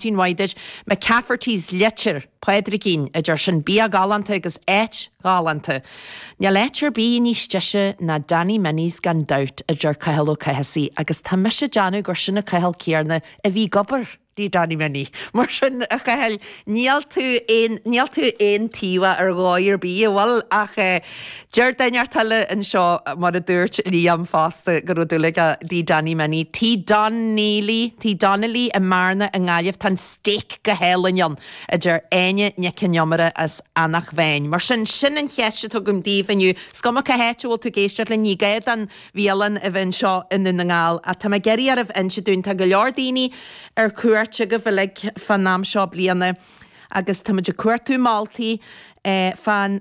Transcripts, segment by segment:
Maidin mhaith duit. McCafferty's Leitir, Pádraigín, a deir sin. Bia galánta agus áit ghalánta. Níl áit ar bith níos deise ná Danny Minnie's gan dabht, a deir Cathal Ó Cathasaigh, agus tá mise ag déanamh gur sin an Cathal céanna a bhí ag obair i Danny Minnie. Mar sin, a Chathail, níl tú aon, níl tú aontaobhach ar dhóigh ar bith, a bhfuil? Ach eh. Deir daoine thart eile anseo, mar a dúirt Liam fosta, go raibh dúil aige i Danny Minnie. Tigh Donnelly, Tigh Donnelly, i mBearna i nGaillimh, tá an steak go hálainn ann, a deir Áine Nic an Iomaire as Eanach Mheáin. Mar sin, sin an cheist atá agam daoibh inniu. Is cuma cá háit a bhfuil tú ag éisteacht linn, ní gá don bhialann a bheith anseo i nDún na nGall, ach tá mé ag iarraidh oraibh inse dúinn, tá go leor daoine ar cuairt agaibh uilig fán am seo bliana agus táimid ag cuartú moltaí fán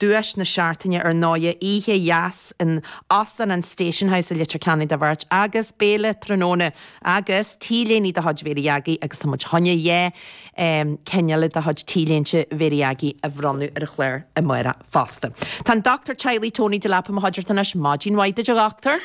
Duais na Seachtaine ar ndóighe, oíche dheas in Óstán an Station House i Leitir Ceanainn do bheirt agus béile tráthnóna agus t-léine de chuid Mháire Hiúdaí agus tá muid ag gabháil a choinneáil dhá cheann eile de chuid t-léinte Mhéara Dheagaigh a bhronnadh ar an chlár amárach fosta. Tá an Dochtúir Teaghlaigh Tony Delap i mo chuideachta anois. Maidin mhaith duit a Dhochtúir.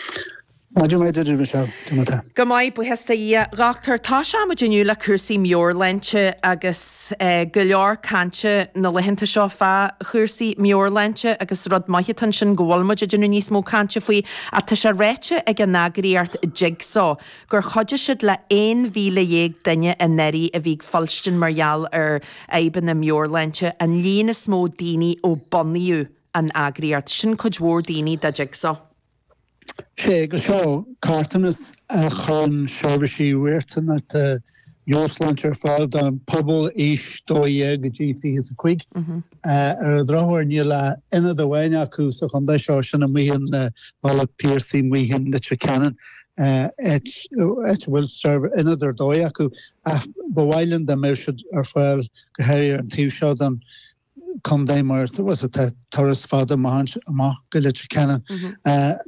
Maidin mhaith duit, a Mhichelle, cad é mar tá tú. Go maith, buíochas do Dhia, a Dhochtúir. Tosóidh muid inniu le cúrsaí meabhairshláinte agus go leor cainte na laethanta seo fá chúrsaí meabhairshláinte agus is rud maith atá ansin go bhfuil muid ag déanamh níos mó cainte faoi ach tá sé ráite ag an eagraíocht Jigsaw gur chuidigh siad le 11,000 duine anuraidh a bhí ag fuilstean mar gheall ar fhadhbanna meabhairshláinte, an líon is mó daoine ó bunaíodh an eagraíocht. Sin cuid mhór daoine do Jigsaw. Is ea agus seo carthanas a chuireann seirbhísí riachtanacha meabhairshláinte ar fáil don phobal aois 12 go dtí 25. Ar an drochuair níl ach ionad amháin acu sa chontae seo sin ar Bhóthar an Phiarsaigh i Leitir, Leitir Ceanainn áit a bhfuil ionad ar dóigh acu ach ba mhaith linn dá mbeadh siad ar fáil go háirithe ar an taobh seo den chontae mar tá sé turas fada amach go Leitir Ceanainn.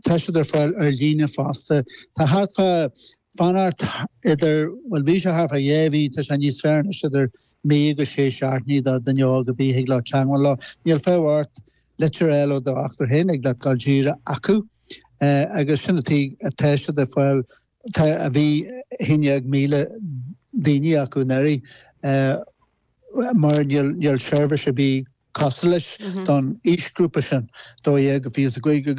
Tá siad ar fáil ar líne fosta. Tá thart fá fanacht idir, bhuel bhí sé thart fá dhá mhí, tá sé níos fearr anois, idir mí agus sé seachtainí do dhuine óg a bheith ag lorg teagmháil leo. Níl fiachadh ort litir a fháil ó do dhochtúir féin thig leat dul díreach chucu. Agus sin atá tá siad ar fáil tá a bhí 11,000 daoine acu anuraidh. mar níl seirbhís ar bith cosúil leis don aoisghrúpa sin, 12-25,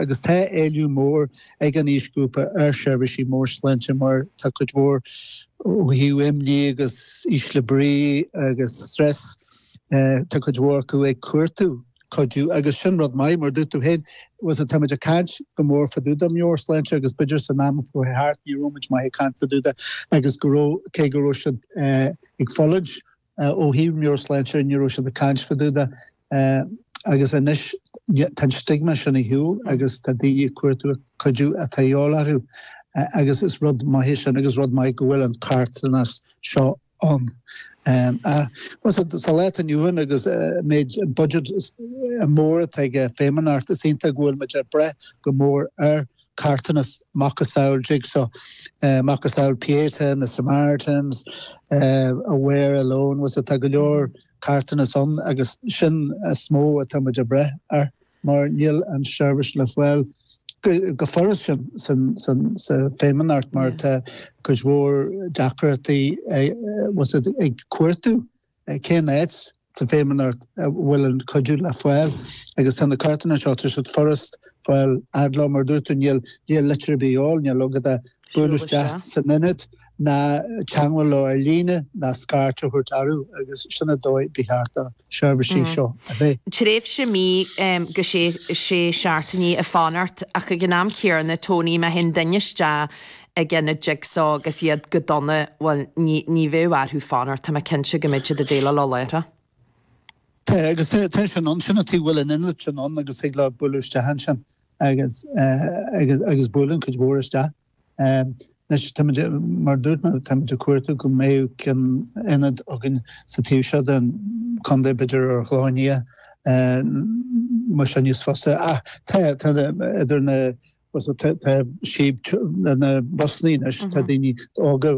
agus tá éileamh mór ag an aoisghrúpa ar sheirbhísí meabhairshláinte mar tá cuid mhór ó thaobh imní agus ísle brí agus stress, tá cuid mhór acu ag cuartú. cuidiú agus sin rud maith mar dúirt tú féin bhfuil fhios agat táimid ag caint go mór fá dtaobh de mheabhairshláinte agus b'fhéidir san am a chuaigh thart ní raibh muid maith ag caint fá dtaobh de agus go raibh cé go raibh siad ag fulaingt ó thaobh meabhairshláinte ní raibh siad ag caint fá dtaobh de agus anois tá an stigma sin ar shiúl agus tá daoine ag cuartú an cuidiú atá de dhíobháil orthu agus is rud maith é sin agus rud maith go bhfuil an carthanas seo ann. Bhfuil fhios agat, sa lá atá inniu ann agus méid an budget mór atá ag an Feidhmeannacht, is iontach go bhfuil muid ag brath go mór ar carthanas macasamhail Jigsaw, macasamhail Pieta, na Samaritans, Aware, Alone, bhfuil fhios agat, tá go leor carthanas ann agus sin is mó atá muid ag brath air mar níl an seirbhís le fáil go furast insa Feidhmeannacht mar tá cuid mhór deacrachtaí bhfuil fhios agat ag cuartú cén áit sa Feidhmeannacht a bhfuil an cuidiú le fáil agus tá na carthanais seo tá siad furast a fháil. Ar lá mar a dúirt tú níl litir ar bith de dhíobháil, níl agat ach bualadh isteach san Ionad. ná teangmháil leo ar líne ná scairt a chur orthu agus sin an dóigh ba cheart do sheirbhísí seo a bheith. Tréimhse mí go sé sé seachtainí ag fanacht ach ag an am céarna Tony má théann duine isteach ag ionad Jigsaw agus iad go dona bhuel ní ní bheidh orthu fanacht tá mé cinnte go mbeidh siad ag déileáil leo láithreach. Tá agus tá tá sé in ann sin ata ag bhfuil an ionad ann agus thig leo bualadh isteach ansin agus agus agus buaileann cuid mhór isteach. Anois, tá muid, mar dúirt mé, tá muid ag cuartú go mbeidh an ionad againn sa taobh seo den chontae, b'fhéidir ar na Gleanntaí, bhfuil fhios agat níos fusa. Ach tá, tá idir na, tá síob na bus linn, tá daoine óga,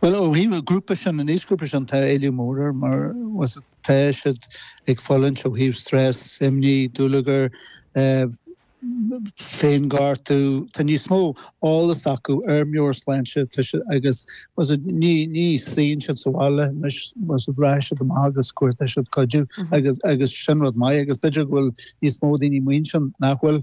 Bhuel ó thaobh an grúpa sin, an aoisghrúpa sin tá éileamh mór air mar bhfuil fhios agat tá siad ag fulaingt ó thaobh stress, imní, dúlagar, eh féinghortú, tá níos mó eolas acu ar meabhairshláinte tá siad agus bhfuil fhios agat ní ní suíonn siad sa bhaile anois bhfuil fhios agat rachaidh siad amach agus cuartóidh siad cuidiú agus agus sin rud maith agus b'fhéidir go bhfuil níos mó daoine amuigh ansin nach bhfuil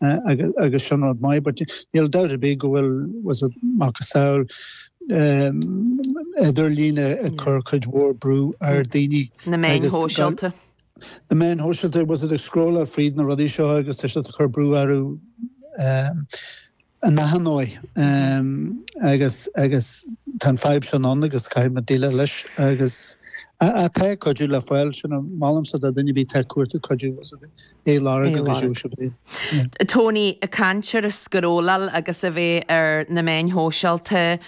agus sin rud maith but níl dabht ar bith go bhfuil bhfuil fhios agat macasamhail idirlín ag cur cuid mhór brú ar daoine. Na meáin shóisialta. Na meáin shóisialta bhfuil fhios agat ag scrolláil fríd na rudaí seo agus tá siad ag cur brú orthu ar ndóigh agus agus tá an fadhb sin ann agus caithfidh muid déileáil leis agus a a tá an cuidiú le fáil sin a molaimse do dhuine ar bith atá ag cuartú cuidiú bhfuil fhios agat Aodh Lorg agus Seosamh Laoi. Tony ag caint ar an scrolláil agus a bheith ar na meáin shóisialta,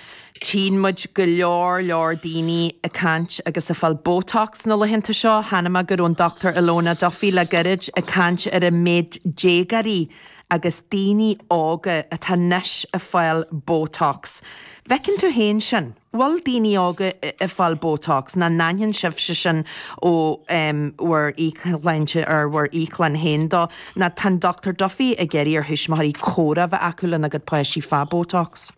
tchíonn muid go leor leor daoine ag caint agus ag fáil botox na laethanta seo. Chonaic mé go raibh an Dr Ilona Duffy le gairid ag caint ar an méid déagáirí agus daoine óga atá anois ag fáil botox. Bhfeiceann tú féin sin? bhfuil daoine óga ag fáil botox, ná n-aithníonn sibhse sin ó bhur íoclainne, ar bhur íoclann féin dó, ná tá an Dr Duffy ag iarraidh ar thuismitheoirí comhrá bheith acu lena gcuid páistí fá botox.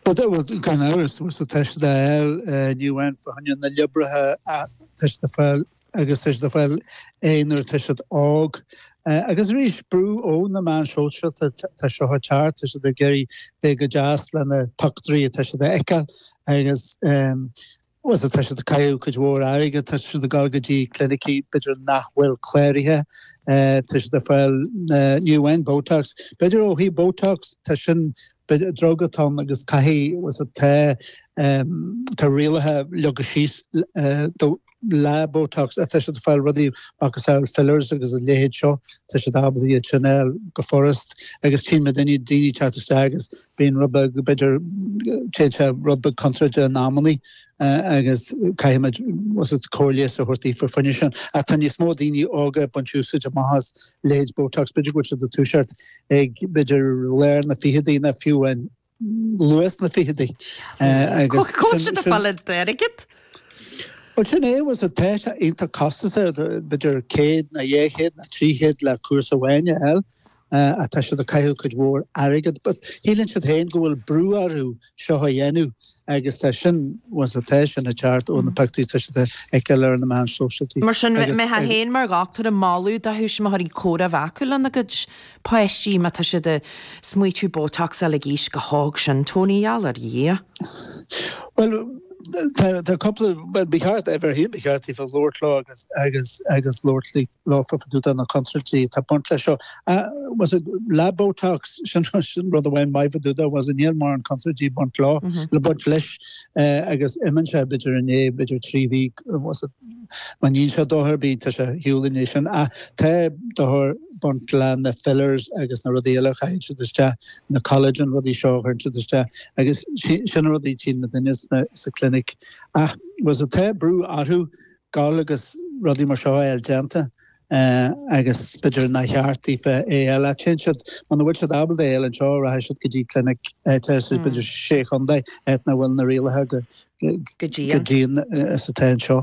Bhuel, gan amhras, tá sé le fáil, ní amháin fá choinne na liobraí, ach tá sé le fáil agus tá siad a fáil é nuair atá siad óg. Agus arís, brú ó na meáin shóisialta atá seo ag tarlú, tá siad ag iarraidh bheith go deas leis na pictiúirí atá siad a fheiceáil agus bhuel tá siad ag caitheamh cuid mhór airgid, tá siad ag dul go dtí clinicí b'fhéidir nach bhfuil cláraithe, tá siad ag fáil ní amháin botox, b'fhéidir ó thaobh botox tá sin ba druga atá ann agus caithfidh, was it, tá, tá rialacha leagtha síos do, le Botox, tá siad ag fáil rudaí macasamhail fillers agus a leithéid seo, tá siad ábalta iad sin fháil go furast agus tchím mé daoine, daoine teacht isteach agus bíonn rud beag, b'fhéidir, téann sé rud beag contráilte in amannaí agus caithfidh muid, was it, comhairle a thabhairt daofa faoi sin. Ach tá níos mó daoine óga ag baint úsáid amach as leithéid Botox, b'fhéidir go bhfuil siad ag toiseacht ag b'fhéidir lár na bhficheadaí ná fiú an luath na bhficheadaí. Agus cá bhfuil siad ag fáil an t-airgead? Bhuel sin é was it tá sé iontach costasach b'fhéidir céad ná dhé chéad ná trí chéad le cúrsa amháin a fháil. Tá siad ag caitheamh cuid mhór airgead but shíleann siad féin go bhfuil brú orthu seo a dhéanamh agus tá sin was a tá sin ag teacht ó na pictiúirí tá siad a fheiceáil ar na meáin sóisialta. Mar sin tusa féin mar dhochtúir ag moladh do thuismitheoirí comhrá a bheith acu lena gcuid páistí má tá siad ag smaoitiú botox a fháil ag aois chomh hóg sin Tony Yallar, yeah. Bhuel tá cúpla, bhuel ba cheart, uimhir a haon ba cheart daofa labhairt leo agus labhairt leo. leo faoi dtaobh de na contúirtí atá ag baint leis seo. Was it le botox? Sin an rud amháin maith faoi dtaobh de, was it? Níl mórán contúirtí ag baint leo, ag baint leis agus imíonn sé b'fhéidir i ndiaidh, b'fhéidir trí mhí, was it? Má níl sé déanta arís tá sé ar shiúl i ndiaidh sin. Ach tá dochar ag baint leis na fillers agus na rudaí eile a chaitheann siad isteach, na collagen rudaí seo a chuireann siad isteach agus sin an rud a tchíonn na daoine sa clinic. Ach was it tá brú orthu Gabháil agus rudaí mar seo a fháil déanta agus b'fhéidir nár cheart daofa é a fháil ach téann siad muna bhfuil siad ábalta é a fháil anseo rachaidh siad go dtí clinic atá sa b'fhéidir sé chondae áit nach bhfuil na rialacha chomh dian is atá anseo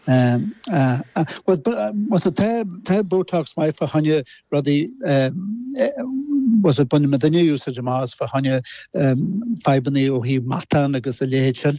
agus tá botox maith fá choinne rudaí agus baineann muidinne úsáid amach as fá choinne fadhbannaí ó thaobh matán agus a leithéid sin.